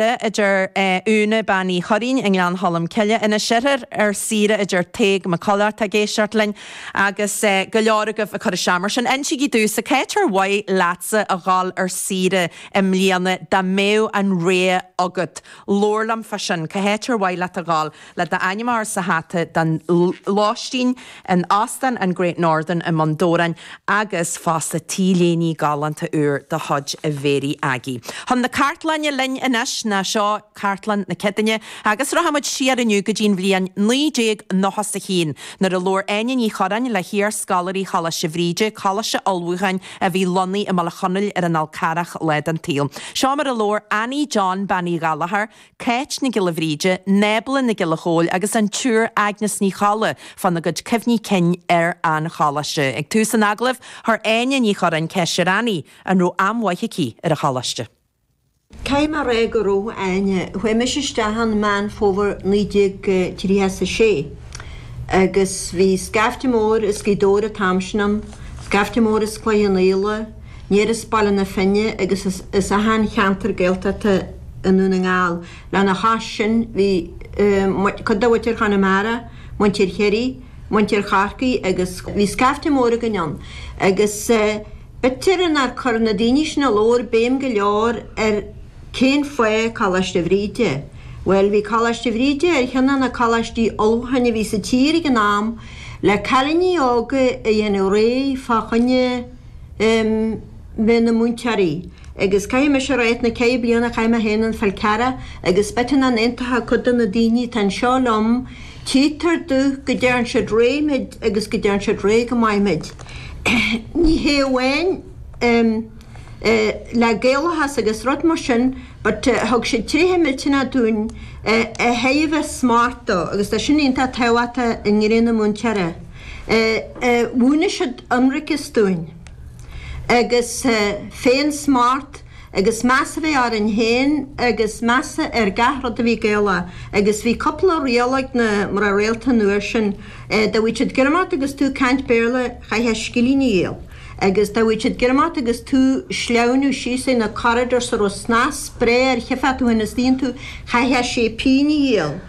Gaeilge, a deir Úna, bean Uí Churraoin i nGleann Cholm Cille, Inis Oirthir ar saoire, a deir Tadhg Mac Coileáin, atá ag éisteacht linn, agus go leor agaibh ag cur isteach. Mar sin, insigí domhsa, cá háit ar mhaith leatsa a dhul ar saoire i mbliana, dá mbeadh an rogha agat. Labhair liom fá sin, cá háit ar mhaith leat a dhul? le d'ainm a chur sa hata don lóistín in Óstán an Great Northern i mBun Dobhráin agus fosta t-léiní galánta úr de chuid Mhéirí Aggie. Chun na cartlainne linn anois ná seo cartlann na Céadainne agus rachaimid siar inniu go dtí'n bhliain 1991 nuair a labhair Áine Ní Churráin le hiar-scoláirí Choláiste Bhríde, coláiste ullmhúcháin a bhí lonnaithe i mBaile Chonaill ar an Fhál Carrach lá den tsaol. Seo mar a labhair Annie John Bean Uí Ghallchóir, Cáit Nic Giolla Bhríde, Nábla Nic Giolla Chóill agus an tSiúr Agnes Ní Cholla fá na gcuid cuimhní cinn ar an choláiste. Ag tús an agallaimh, chuir Áine Ní Churráin ceist ar Annie an raibh am mhaith aici ar an choláiste. Caithfidh mé a rá go raibh, a Áine. Chuaigh mise isteach ann Meán Fómhair 1936 agus bhí scaifte mór as Gaoth Dobhair an t-am sin ann, scaifte mór as Cloich Cheann Fhaola, aniar as Baile na Finne agus as achan cheantar Gaeltachta i nDún na nGall. Lena chois sin bhí cuid de mhuintir Chonamara, muintir Chiarraí, muintir Chorcaí agus bhí scaifte mór againn ann. Agus b'fhéidir nár chuir na daoine sin a labhair béim go leor ar cén fáth Coláiste Bhríde. Bhuel bhí Coláiste Bhríde ar cheann de na coláistí ullmhúcháin a bhí sa tír ag an am le cailíní óga a dhéanamh réidh fá choinne bheith ina múinteoirí, agus caithfidh mise a rá, ach na ceithre bliana a chaith mé féin ar an Fhál Carrach, agus b'fhéidir nach n-aontódh cuid de na daoine atá anseo liom, tchítear domh go dtearn siad réidh muid agus go dtearn siad réidh go maith muid. Ní hé amháin le Gaelachas agus rud mar sin, but thug siad tréithe millteanacha dúinn a thaobh smacht dó, agus tá sin iontach tábhachtach i dtraenáil múinteora. Mhúineadh siad ionracas dúinn, agus féinsmacht, agus meas a bheith orainn féin, agus meas ar gach rud a bhí Gaelach. Agus bhí cúpla riail ag na mná rialta an uair sin, dá bhfaigheadh siad greim ort agus tú ag caint Béarla, chaithfeá scilling a dhíol, agus dá bhfaigheadh siad greim ort agus tú ag sleamhnú síos ar na corridors a raibh snas breá air, tchífeá thú féin istigh iontu, chaithfeá sé pingine a dhíol.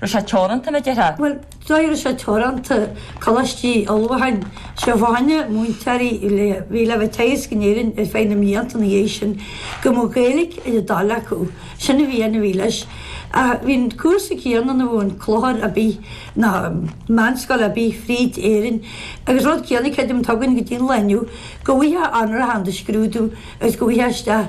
raibh sé teoranta, a déarfá. Bhuel, an dóigh a raibh sé teoranta, coláistí ullmhúcháin, fá choinne múinteoirí a bhí bhí le bheith teagasc in Éirinn ar feadh na mblianta ina dhiaidh sin, go mbeadh Gaeilge ar a dtoil acu, sin a bhí ann, a bhí leis. Ach bhí an cúrsa céanna ann a bheadh in clochar ar bith ná meánscoil ar bith fríd Éirinn agus rud céanna, creidim, atá againn go dtí an lá inniu, go bhfuightheá onóracha in do scrúdú agus go bhfuightheá isteach.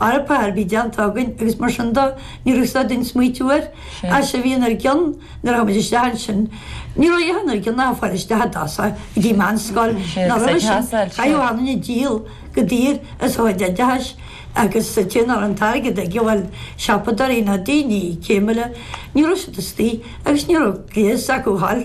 Eorpa ar bith déanta againn agus mar sin de ní raibh siad ag smaoitiú air ach sé bhíonn ar gcionn nuair a tháimid isteach ansin, ní raibh aon ar gcionn ach fáil isteach i dtosach go dtí meanscoil nó roimhe sin chaithfeadh duine díol go daor as a chuid oideachais agus an té ná raibh an t-airgead aige bhuel siopadóirí ná daoine céimiúla ní raibh siad istoigh agus ní raibh gléas acu thall.